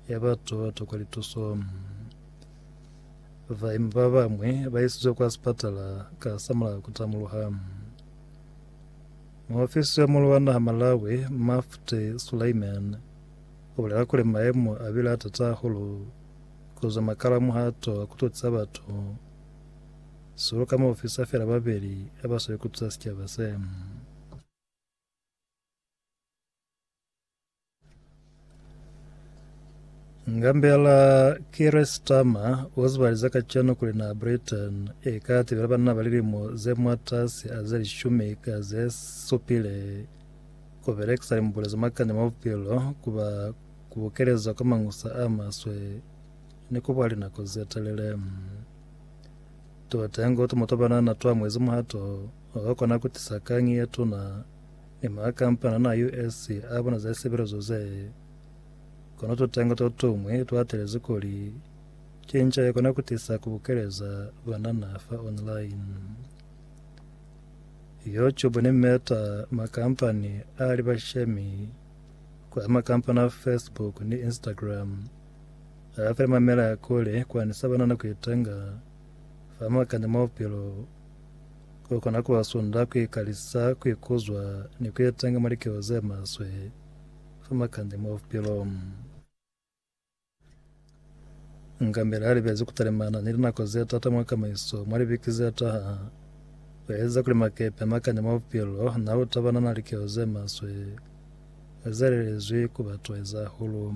ya batu ba tokwa lituso. Baimi ba bamwe ba isizwe kwa sipatala ka samulaho ku tamuluha. Muofisi yo mulu wa naha Malawi, Mufti Sulaiman, o bulela kuli maemo a bile a tata hahulu ku zwa makala muhato wa ku tutisa batu, sihulu ka maofisa fela babeli ha ba sweli ku tusa sicaba se. Ngambela Keir Starmer uzibaliza kacenu kuli na Britain eka tibela banna ba lilimo ze mwatasi a ze lishumi ka ze supile kubelekisa limbulo ze makanya mwa bupilo kuba kubukeleza kwa mangusa a maswe ni kuba linako ze telele. Tuteñi kuti mutu banana twa mwezi muhato wakona kutisa kangi yetuna Ni makampani ana US a bona za sibelezo ze. Kono tutengo to tumwi twa telezi kuli, Cinca ye kona ku tisa ku bukeleza banana fa online. YouTube ni Meta, makampani a li bashemi kwa makampani a Facebook ni Instagram, a file mamela ya kuli ku anisa banana ku itenga fa makani mo bupilo. Ku kona ku ba sunda ku ikalisa, ku ikuzwa, ni ku etenga mwa likeo ze maswe fa makande mwa bupilo. Ngambele a libezi ku talimana ni linako ze t'ata mwa kamaiso mwa libiki ze taha. Ku eza kuli makepe a makande mwa bupilo n'a lu tabana n'a likeo ze maswe, ku ezalelezwi ku ba tueza hahulu.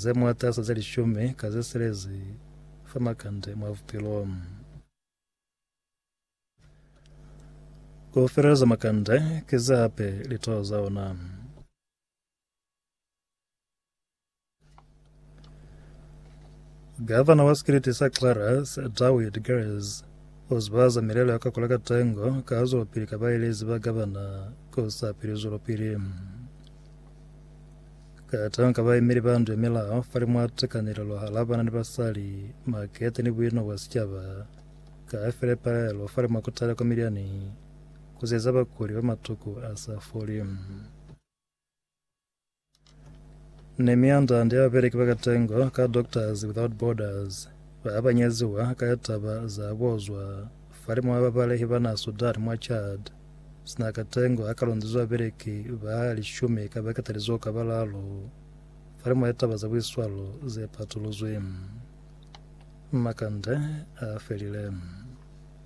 Ze mwatasa ze lishumi ka ze silezi fa makande mwa bupilo. Ku feleleza makande ki ze hape litoho za ona. Gavana wa sikiliti sa Clarus, Dawid Gers, u zibahaza milelo ya kakula ka tengo ka ha zwelopili ka baelezi ba gavana ku sa pili zwelopili. Ka tanga baemeli ba ndu ya milao fali mwa tekanelelo hala bana ni basali, makete ni buino bwa sicaba. Ka file palelo fali mwa kutala kwa milyani ku sieza bakuli ba matuku a sa foli. Nemia Ndandi ya beleki ba katengo ka Doctors Without Borders ba banyeziwa ka ya taba za kuozwa fali mwa babalehi ba na Sudan mwa Chad. sina katengo ha kalondezwa beleki ba lishumi ka bakatalizo ka balalu fali mwa litaba za buiswalo ze patuluzwi. Makande a felile.